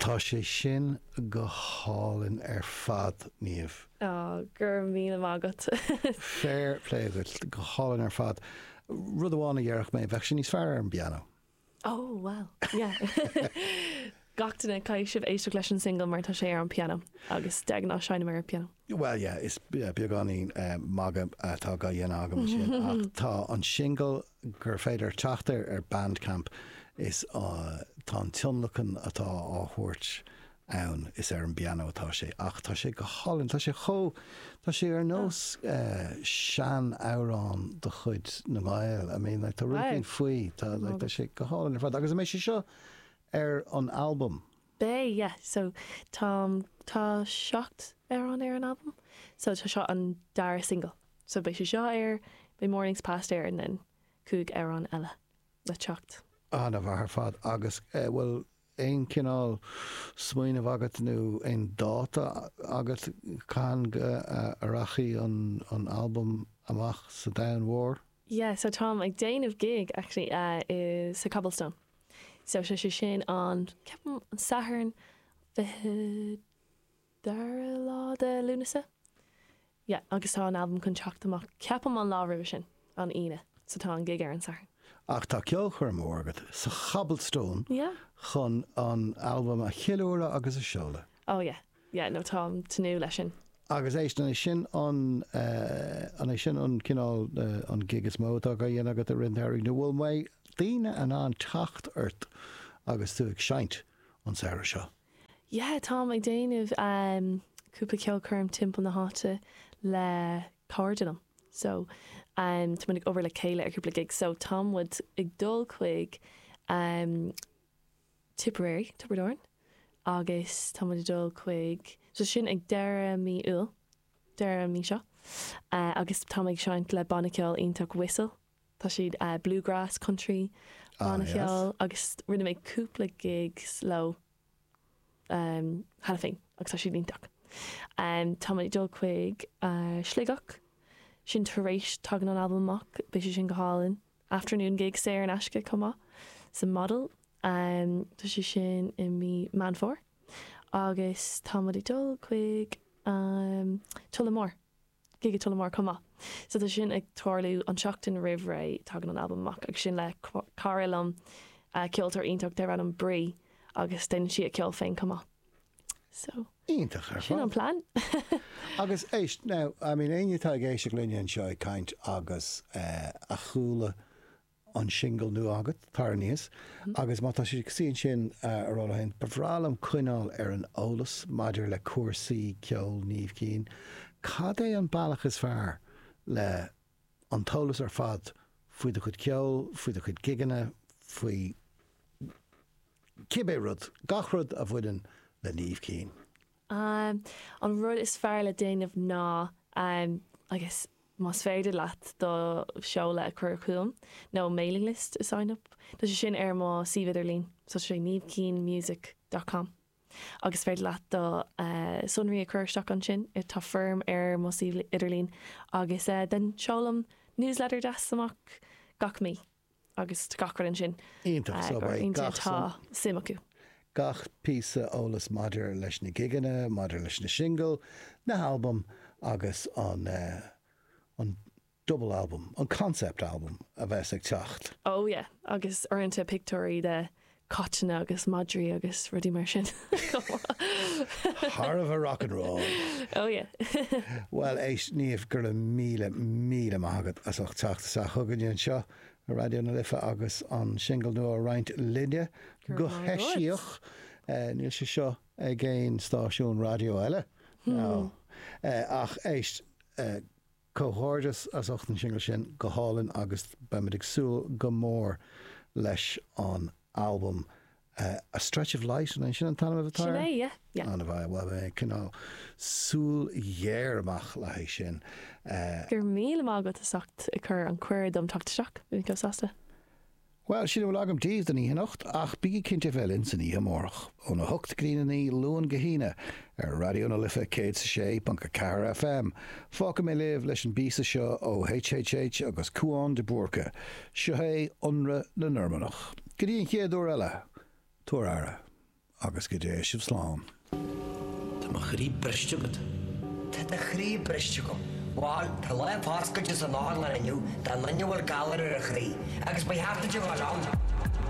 Tá sé sin go hálainn ar fad, Niamh. Oh, go raibh míle maith agat. Féir plé agat. Go hálainn ar fad. Rud amháin a dhéarfadh mé, bheadh sé níos fearr ar an bpianó. Oh, bhuel, yeah. Gach duine, caithfidh sibh éisteacht leis an singil mar tá sé ar an bpianó agus de ghnáth seinnim ar an pianó. Bhuel, yeah, is beagáinín magadh atá á dhéanamh agam ansin ach tá an singil gur féidir teacht air ar Bandcamp is tá an tionlacan atá á thabhairt ann is ar an bpianó atá sé ach tá sé go hálainn, tá sé chomh, tá sé ar nós sean amhrán de chuid na nGael, I mean like tá rud éigin faoi, tá sé go hálainn ar fad agus an mbeidh sé seo ar an albam. Beidh, yeah. So, táim, tá seacht amhrán ar an albam. So, tá seo an dara single. So, beidh sé seo air, beidh Mornings Past air and then cúig amhrán eile le teacht. An-mhaith ar fad. Agus eh, bhfuil aon cineál smaoineamh agat nó aon dáta agat cathain a rachaidh an, an albam amach sa domhan mhór? Yeah, so táim ag déanamh gig actually, eh, i, sa Cobblestone. So, sé sé sin an, ceapaim, an Satharn, fiche dara lá de Lúnasa. Yeah, agus tá an albam chun teacht amach, ceapaim, an lá roimhe sin, an Aoine. So tá an gig ar an Satharn. So tá ceolchoirm mhór agat sa Cobblestone chun an albam a cheiliúradh agus a sheoladh. Oh yeah, yeah no táim ag tnúth leis sin. Agus éist, an é sin an, an é sin an cineál, an gig is mó atá á dhéanamh agat i rith an tsamhraidh nó bhfuil mbeidh daoine in ann teacht ort agus tú ag seinnt an samhradh seo? Yeah táim ag déanamh ehm cúpla ceolchoirm timpeall na háite le cairde liom so ehm tá muid ag obair le chéile ar cúpla gig so tá muid ag dul chuig ehm Tipperary, Tiobraid Árann, agus tá muid ag dul chuig so sin ag deireadh mí Iúil, deireadh an mí seo, agus tá muid ag seinnt le banna ceoil iontach, Whistle, tá siad bluegrass, country banna ceoil agus rinne mé cúpla gigs leo cheana féin agus tá siad iontach. Tá muid ag dul chuig Sligeach, sin tar éis, tagann an albam amach, beidh sé sin go hálainn. afternoon gig saor in aisce chomh maith sa Model. Tá sé sin i mí Meán Fómhair agus tá muid ag dul chuig Tullamore, gig i Tullamore chomh maith. So tá sé sin ag tarlú an tseachtain roimh ré tagann an albam amach agus sin le cara liom, ceoltóir iontach darb ainm Bree agus déanann sí a ceol féin chomh maith. So. Iontach ar fad. Sin an plean. Agus éist, now, I mean, éinne atá ag éisteacht linne anseo ag caint agus a chuala an singil nua agat, Tar Aníos, agus má tá siad ag suí ansin a rá leo féin, ba bhreá liom coinneáil ar an eolas maidir le cúrsaí ceoil Niamh Keane. Cad é an bealach is fearr le an t-eolas ar fad faoi do chuid ceoil, faoi do chuid gigeanna, faoi cibé rud, gach rud a bhaineann le Niamh Keane. An rud is fearr le déanamh ná, I guess, más féidir leat do sheoladh a chur chugam, nó mailing list a sign up. Tá sé sin ar mo suíomh idirlín, so sé niamhkeanemusic dot com. agus is féidir leat do sonraí a chur isteach ansin. Tá foirm ar mo suíomh idirlín agus seolaim newsletter deas amach gach mí agus tá gach rud ansin d'éinne atá suim acu. Gach píosa eolas maidir leis na gigeanna, maidir leis na singil, na halbaim agus an. Double album, an concept album a bheas ag teacht. Oh yeah agus uaireanta pictiúirí de chaiteanna agus madraí agus rudaí mar sin chomh maith. Thar a bheith rock and roll! Oh yeah. Bhuel éist Niamh go raibh míle míle maith agat as ucht teacht isteach chugainne anseo ar Raidió na Life agus an singil nua a roinnt linne go heisiach. Go raibh maith agat. Níl sé seo ag aon stáisiún raidió eile now ach éist eh. Comhghairdeas as ucht an singil sin, go hálainn agus beimid ag súil go mór leis an albam. A Stretch of Light, an é sin an t-ainm atá air? Sin é, yeah, yeah. An-mhaith, bhuel beidh mé ag coinneáil súil ghéar amach le haghaidh sin. Go raibh míle maith agat as ucht ag cur an cuireadh dom teacht isteach, bhí mé chomh sásta. Bhuel, sin a bhfuil agam daoibh don oíche anocht, ach bígí cinnte a bheith linn san oíche amárach, óna hocht go dtí na naoi, Luan go hAoine, ar Raidió na Life 106.4 FM. Fágfaidh mé libh leis an bpíosa seo ó HHH agus Cúán de Búrca. Seo é, Ionradh na Normannach. Go dtí an chéad uair eile, tabhair aire. Agus go dté sibh slán. Tá mo chroí briste agat. Tá do chroí briste agam. Bhal, tá lá foscailte san otharlann inniu do dhuine a bhfuil galar ar a chroí, agus ba cheart duit a dhul ann.